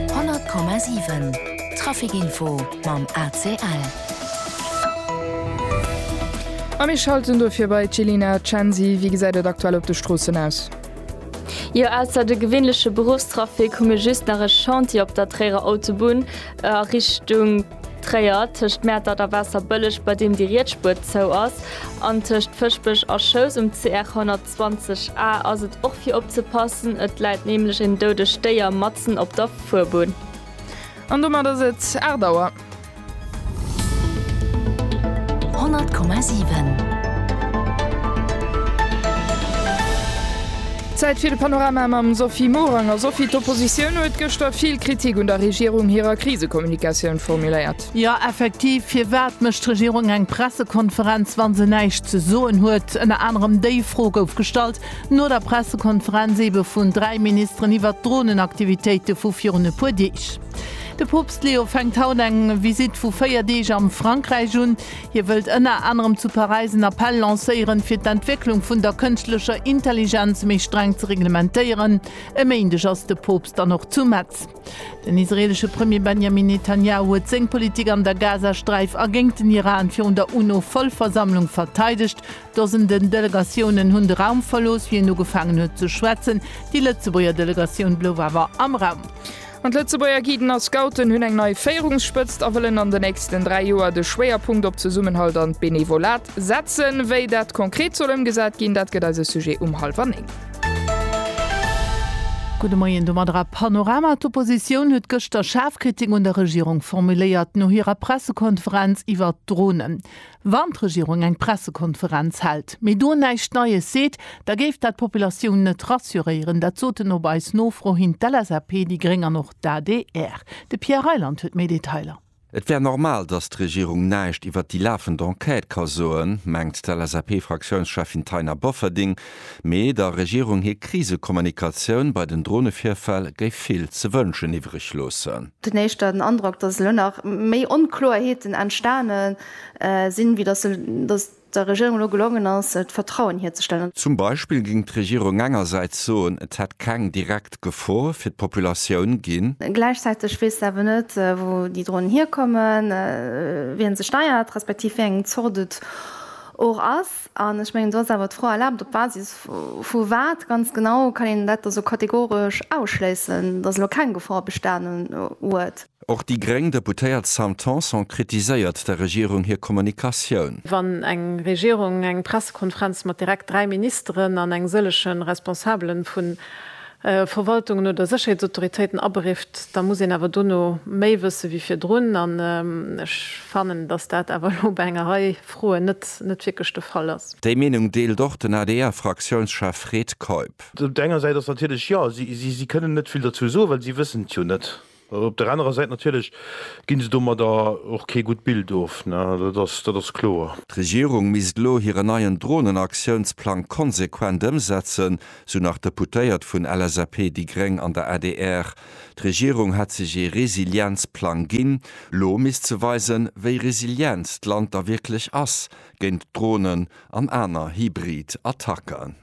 100,7 Trafic Info mam ACL. A mir schalten dofir bei d'Jelena Censi. Wéi gesäit et aktuell op de Stroossen aus? Jo, ausser de gewinnleche Beruffstrafic hu mir just nach e Chantier op der Tréierer Autobunn a Richtung Tréier, tëscht Mäertert a Waasserbëlleg, bei deem déi riets Spuer zou ass, an tëscht Fëschbech a Schous um CR 110. 20 A ass et och fir opzepassen, et läit nämlech en doudegt Déier matzen op der Fuerbunn. An domat ass et 8 Auer. 100,7. Zäit fir de Panorama mam Sophie Morang. A Sophie, d'Oppositioun huet gëschter vill Kritik un der Regierung hirer Krisekommunikatioun formuléiert. Jo effektiv, firwat mécht d'Regierung eng Pressekonferenz wann se näischt ze soen huet? Ënner anerem déi Fro gouf gestallt no der Pressekonferenz ebe vun 3 Ministeren iwwert d'Dronenaktivitéite vu virun e puer Deeg. De Poopst Leo fänkt haut eng Visitt vu 4 Deeg am Frankräich un. Hie wëllt ënner anerem zu Paräis en Appell lancéieren, fir d'Entwécklung vun der kënschtlecher Intelligenz méi streng ze reglementéieren. E Méindeg ass de Poopst dann och zu Metz. Den israeelesche Premier Benjamin Netanjahu huet seng Politik an der Gazasträif a géingt den Iran virun der UNO-Vollversammlung verteidegt. Dosenden Delegatiounen hunn de Raum verlooss, wéi en ugefaangen huet ze schwätzen. Déi Lëtzebuerger Delegatioun blouf awer am Raum. An d'Lëtzebuerger Guiden a Scouten hunn eng nei Féierungsspëtzt a wëllen an de nächsten 3 Joer de Schwéierpunkt op Zesummenhalt an d'Benevolat setzen. Wéi dat konkret soll ëmgesat ginn, dat gëtt eise Sujet um hallwer néng. Gudde Moien, domadder a Panorama. D'Oppositioun huet gëschter schaarf Kritik un der Regierung formuléiert no hirer Pressekonferenz iwwert d'Dronen. Wann d'Regierung eng Pressekonferenz hält, mee do näischt Neies seet, da géif dat d'Populatioun net rassuréieren. Dat soten op eis Nofro hin d'LSAP, déi Gréng an och d'ADR. De Pierre Reyland huet méi Detailer. Et wär normal, datt d'Regierung näischt iwwert déi lafend Enquête ka soen, mengt d'LSAP-Fraktiounscheffin Taina Bofferding. Mee der Regierung hir Krisekommunikatioun bei den Dronevirfäll géif vill ze wënschen iwwreg loossen. Den éischten Androck, datt elo nach méi Onkloerheeten entstane sinn, wéi datt der Regierung elo gelongen ass, d'Vertrauen hierzestellen. Zum Beispill géing d'Regierung engersäits soen, et hätt keng direkt Gefor fir d'Populatioun ginn. Gläichzäiteg weess se awer net, wou déi Dronen hierkommen, wien se steiert, respektiv wéi eng Zort et och ass. An ech mengen, do ass awer d'Fro erlaabt, op Basis vu wat ganz genau kann een dat da sou kategoresch ausschléissen, datt elo keng Gefor bestanen huet? Och déi gréng Deputéiert Sam Tanson kritiséiert der Regierung hir Kommunikatioun. Wann eng Regierung eng Pressekonferenz mat direkt dräi Ministeren an eng sëllege Responsabele vu Verwaltungen oder Sécherheetsautoritéiten aberifft, da muss een awer dono méi wësse wéi virdrun. An ech fannen, datt dat awer elo bei enger Rei Froen net wierklech de Fall ass. Déi Meenung deelt och den ADR-Fraktiounschef Fred Keup. Op der enger Säit ass natierlech, jo, si kënnen net vill dozou soen, well si wëssen et jo net. Op der anerer Säit natierlech gi se domadder och kee gutt Bild of, dat ass kloer. D'Regierung misst elo hiren neien Dronenaktiounsplang konsequent ëmsetzen, sou nach d'Deputéiert vun LSAP, déi gréng an der adr. D'Regierung hätt sech ee Resilienzplang ginn. Lo misst se weisen, wéi resilient d'Land da wierklech ass géint Dronen an aner hybrid Attacken.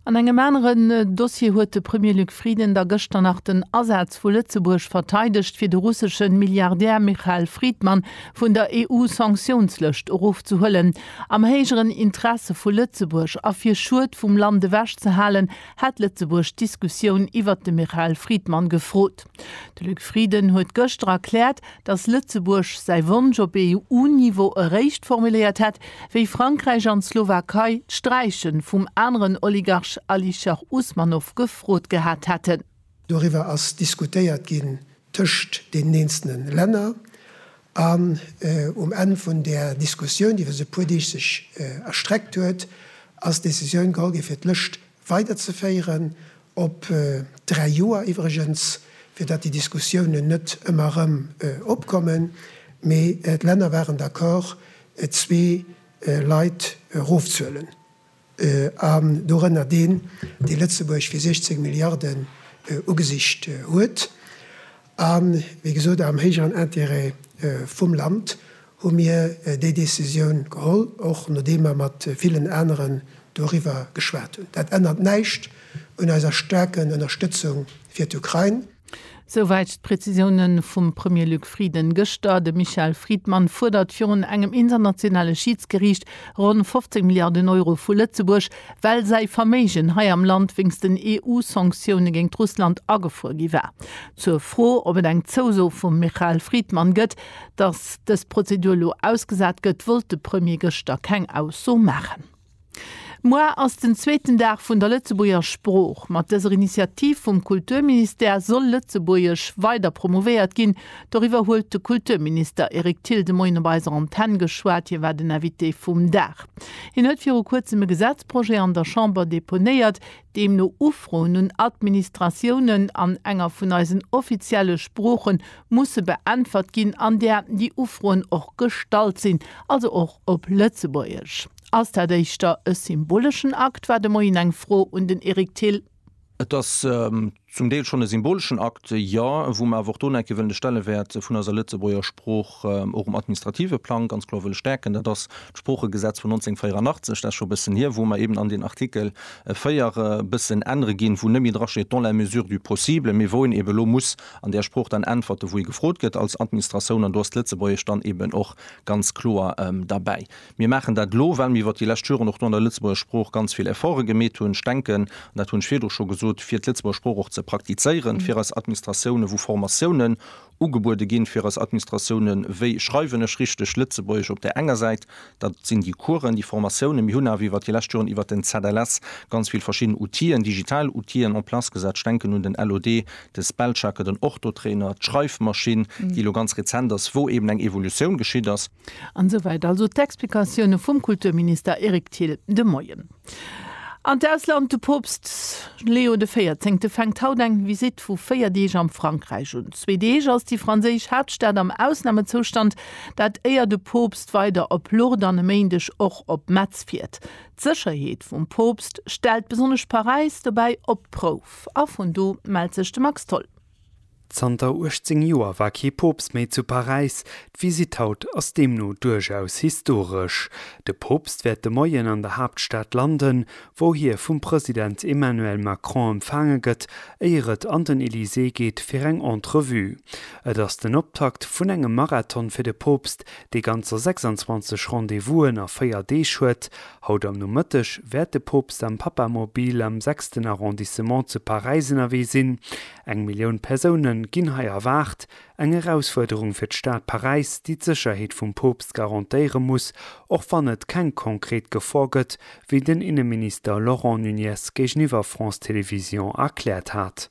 An engem aneren Dossier huet de Premier Luc Frieden da gëschter nach den Asaz vu Lëtzebuerg verteidegt, fir de russesche Milliardär Michael Fridman vun der EU-Sanktiounslëscht erofzehuelen. Am héijeren Interesse vu Lëtzebuerg a fir Schued vum Land ewech ze halen, hätt Lëtzebuerg d'Diskussioun iwwert de Michael Fridman gefrot. De Luc Frieden huet gëschter erkläert, datt Lëtzebuerg säi Wonsch op EU-Niveau eréischt formuléiert hätt, wéi Frankräich an d'Slowakei d'Sträiche vum aneren Oligarch Alisher Usmanov gefrot gehat hätten. Doriwwer ass diskutéiert ginn tëscht deenen eenzelne Länner an um Enn vun där Diskussioun, déi iwwer esou e puer Deeg sech erstreckt huet, ass d'Decisioun geholl ginn, fir d'Lëscht Weiderzeféieren, op dräi Joer iwwregens, fir datt déi Diskussiounen net ëmmer erëm opkommen. Mee d'Länner waren d'accord, zwee Leit erofzuhuelen, an dorënner deen, dee Lëtzebuerg fir 16 Milliarden ugesicht huet. A wéi gesot, am héijeren Intérêt vum Land hu mir déi Décisioun geholl, och nodeem mer mat villen aneren doriwwer geschwat hunn. Dat ännert näischt un eiser staarken Ënnerstëtzung fir d'Ukrain. Souwäit d'Präzisioune vum Premier Luc Frieden gëschter. De Michael Friedmann fuerdert virun engem internationale Schiidsgeriicht ronn 15 Milliarden Euro vu Lëtzebuerg. well säi Verméigen hei am Land wéinst den EU-Sanktioune géint Russland agefruer gi war. Zur Fro, ob et eng Zouso vum Michael Friedmann gëtt, datt dës Prozedur elo ausgesat gëtt, wollt de Premier gëschter keng Ausso maachen. Muer ass den zweeten Dag vun der Lëtzebuerger Sprooch. Mat dëser Initiativ vum Kulturministère soll Lëtzebuergesch weider promouvéiert ginn, Doriwwer huet de Kulturminister Eric Thill de Moien op eiser Antenn geschwat. Hie war den Invité vum Dag. Hien huet viru kuerzem e Gesetzprojet an der Chamber deponéiert, deem no Ufroen un Administratiounen an enger vun eisen offizielle Sprooche musse beäntwert ginn, an där déi Ufroen och gestallt sinn, also och op Lëtzebuergesch. Ass dat éischter e symboleschen Akt? war de Moien eng Fro un den Eric Thill. Et ass Zum Deel schonn e symboleschen Akt, jo, wou mer awer och do nach eng Kéier wëllen de Stellewäert vun eiser Lëtzebuerger Sprooch och um administrative Plang ganz kloer wëlle stäerken. Dat ass d'Sproochegesetz vun 1984, dat ass scho e bëssen hier, wou mer eben an deen Artikel 4 e bëssen ännere ginn, wou net méi drasteet dans la mesure du possible, mee wou een eben elo muss an där Sprooch dann äntwerte wou ee gefrot gëtt als Administratioun, an do ass d'Lëtzebuergesch dann eben och ganz kloer derbäi. Mir maachen dat elo, well mir iwwert déi lescht Joren och do an der Lëtzebuerger Sprooch ganz vill Efforte gemeet hunn. Ech denken, an dat hunn ech virdru scho gesot, fir d'Lëtzebuerger Sprooch och ze praktizéieren fir eis Administratiounen, wou Formatiounen ugebuede ginn fir eis Administratiounen, wéi schreiwen ech richteg Lëtzebuergesch op där enger Säit, dat sinn déi Coursen, déi Formatiounen. Mir hunn awer iwwert déi lescht Joren iwwert den ZLS ganz vill verschidden Outile, digital Outile en place gesat. Ech denken un den LOD, de Spellchecker, den Orthotrainer, d'Schreifmaschinn, déi elo ganz rezent ass, wou eeben eng Evolutioun geschitt ass. An esou wäit also d'Explikatioune vum Kulturminister Eric Thill de Moien. An d'Ausland, De Poopst Leo de Véierzéngte fänkt haut eng Visitt vu 4 Deeg am Frankräich un. Zwee Deeg ass déi franséisch Haaptstad am Ausnamezoustand, dat éier de Poopst weider op Lourdes an e Méindeg och op Metz fiert. D'Sécherheet vum Poopst stellt besonnesch Paräis dobäi op d'Prouf a vun do mellt sech de Max Tholl. Zanter 18 Joer war kee Poopst méi zu Paräis. D'Visitt haut ass deemno duerchaus historesch. De Poopst wäert de Moien an der Haaptstad landen, wou hie vum President Emmanuel Macron empfaange gëtt, éier et an den Elysée geet fir eng Entrevue. Et ass den Optakt vun engem Marathon fir de Poopst, dee ganzer 26 Rendez-Vousen a véier Deeg huet, Haut am Nomëtteg wäert de Poopst am Papamobil am sechsten Arrondissement zu Paräis ënnerwee sinn. Eng Millioun Persoune ginn hei erwaart. Eng Erausfuerderung fir d'Stad Paräis, déi d'Sécherheet vum Poopst garantéiere muss, och wann et keng konkret Gefor gëtt, wéi den Inneminister Laurent Nunez géigeniwwer France Télévisions erkläert hat.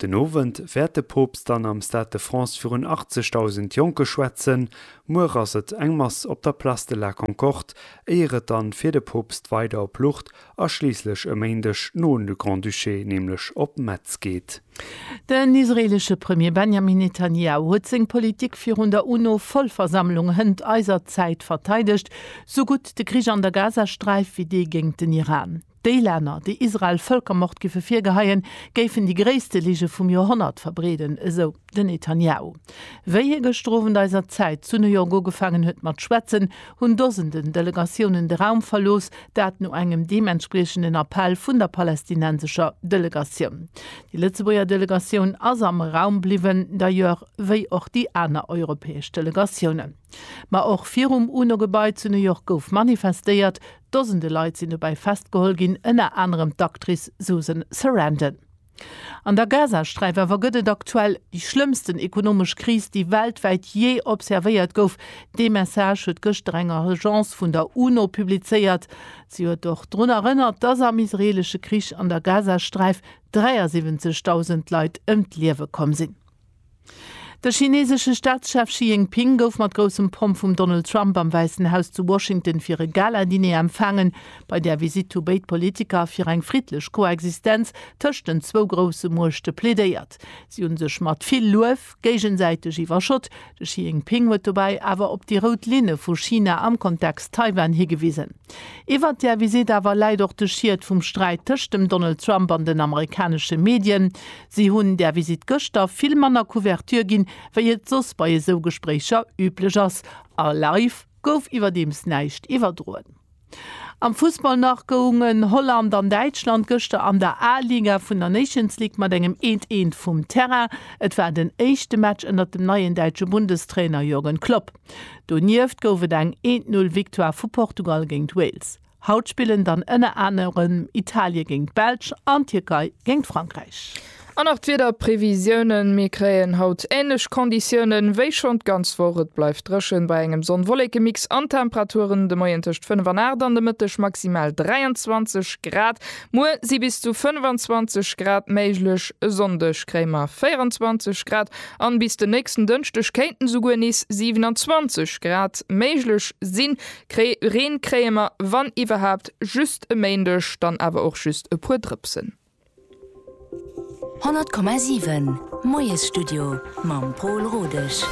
Den Owend wäert de Poopst dann am Stade de France virun 80.000 Jonke schwätzen. Muer ass et eng Mass op der Place de la Concorde, éier et dann fir de Poopst weider op Lourdes a schliisslech e Méindeg no an de Grand-Duché, nämlech op Metz geet. Den israeelesche Premier Benjamin Netanjahu huet seng Politik virun der UNO-Vollversammlung hënt eiser Zäit verteidegt, sou gutt de Krich an der Gazasträif wéi dee géint den Iran. Déi Länner, déi Israel Vëlkermord giffe virgeheien, géifen déi gréisste Lige vum Joerhonnert verbreeden, esou den Netanjahu. Wéi hie gëschter Owend eiser Zäit zu New York ugefaangen huet mat schwätzen, hunn Dosenden Delegatiounen de Raum verlooss, dat no engem deementspriechenden Appell vun der palästinensescher Delegatioun. Déi Lëtzebuerger Delegatioun ass am Raum bliwwen, d'ailleurs wéi och déi aner europäesch Delegatiounen. Ma och virum UNO-Gebai zu New York gouf manifestéiert, Dosende Leit sinn dobäi festgeholl ginn, ënner anerem d'Actrice Susan Sarandon. An der Gazasträif awer gëtt et aktuell déi schlëmmsten ekonomesch Kris, déi weltwäit jee observéiert gouf. Dee Message huet gëschter eng Agence vun der UNO publizéiert. Si huet och drun erënnert, dass am israeelesche Krich an der Gazasträif 73.000 Leit ëm d'Liewe komm sinn. De chineesesche Staatschef Xi Jinping gouf mat groussem Pomp vum Donald Trump am Wäissen Haus zu Washington fir e Gala-Diner empfaangen. Bei där Visitt hu béid Politiker fir eng friddlech Koexistenz tëscht den zwou grousse Muechte plädéiert. Si hu sech mat vill Luef géigesäiteg iwwerschott. De Xi Jinping huet dobäi awer op déi rout Linne vu China am Kontext Taiwan higewisen. Iwwert där Visitt awer läit och de Schiet vum Sträit tëscht dem Donald Trump an den amerikanesche Medien. Si hunn där Visitt gëschter vill manner Couverture ginn, wéi et soss bei esou Gespréicher üblech ass. A live gouf iwwerdeems näischt iwwerdroen. Am Fussball nach goungen Holland an Däitschland gëschter an der A-Liga vun der Nations League mat engem eent eent vum Terrain. Et war den éischte Match ënnert dem neien däitsche Bundestrainer Jürgen Klopp. Donieft gouf et eng eent null Victoire vu Portugal géint Wales. Haut spillen dann ënner anerem Italie géint d'Belsch an d'Tierkei géint Frankräich. An nach d'Wiederprevisiounen, Mir kréien haut änlech Konditiounen wéi schonn d'ganz Woch. Et bleift dréchen bei engem Sonn-Wollekemix an d'Temperaturen de Moien tëscht 5 an 8 an de Mëtteg maximal 23 Grad. Muer si bis zu 25 Grad méiglech, e Sonndeg kréie mer 24 Grad an bis den nächsten Dënschdeg kéinten esouguer nees 27 Grad méiglech sinn. Kréi Reen kréie mer, wann iwwerhaapt, just e Méindeg, dann awer och just e puer Drëpsen. 100,7 Moiesstudio mam Pol Rodesch.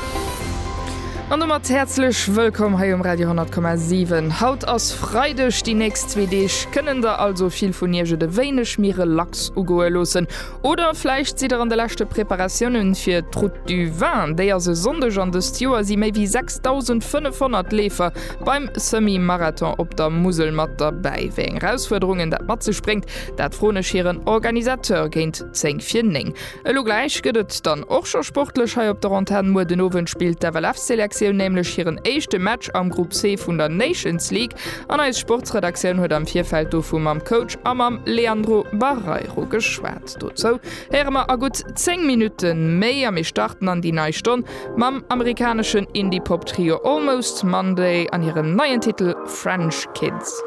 An domat häerzlech wëllkomm hei um Radio 10,7. Haut ass Freideg, déi nächst zwee Deeg kënnen der also vill vun Iech et e wéineg méi relax ugoe loossen. Oder vläicht sidd der an de leschte Preparatiounen fir d'Route du Vin? Déi ass e Sonndeg an dëst Joer si méi wéi 6.500 Leefer beim Semi-Marathon op der Musel mat derbäi. Wéi eng Erausfuerderungen dat mat sech bréngt, dat froen ech hiren Organisateur géint 10 vir 9. Elo gläich gëtt et dann och scho sportlech hei op der Antenn. Muer den Owend spillt d'FLF-Selektioun nämlech hiren éischte Match am Grupp C vun der Nations League. An eis Sportsredaktioun huet am Virfeld dovu mam Coach a mam Leandro Barreiro geschwat. Dozou héiere mer a gutt 10 Minutte méi a mir starten an déi nei Stonn mam amerikaneschen Indie-Pop-Trio Almost Monday an hirem neien Titel French Kids.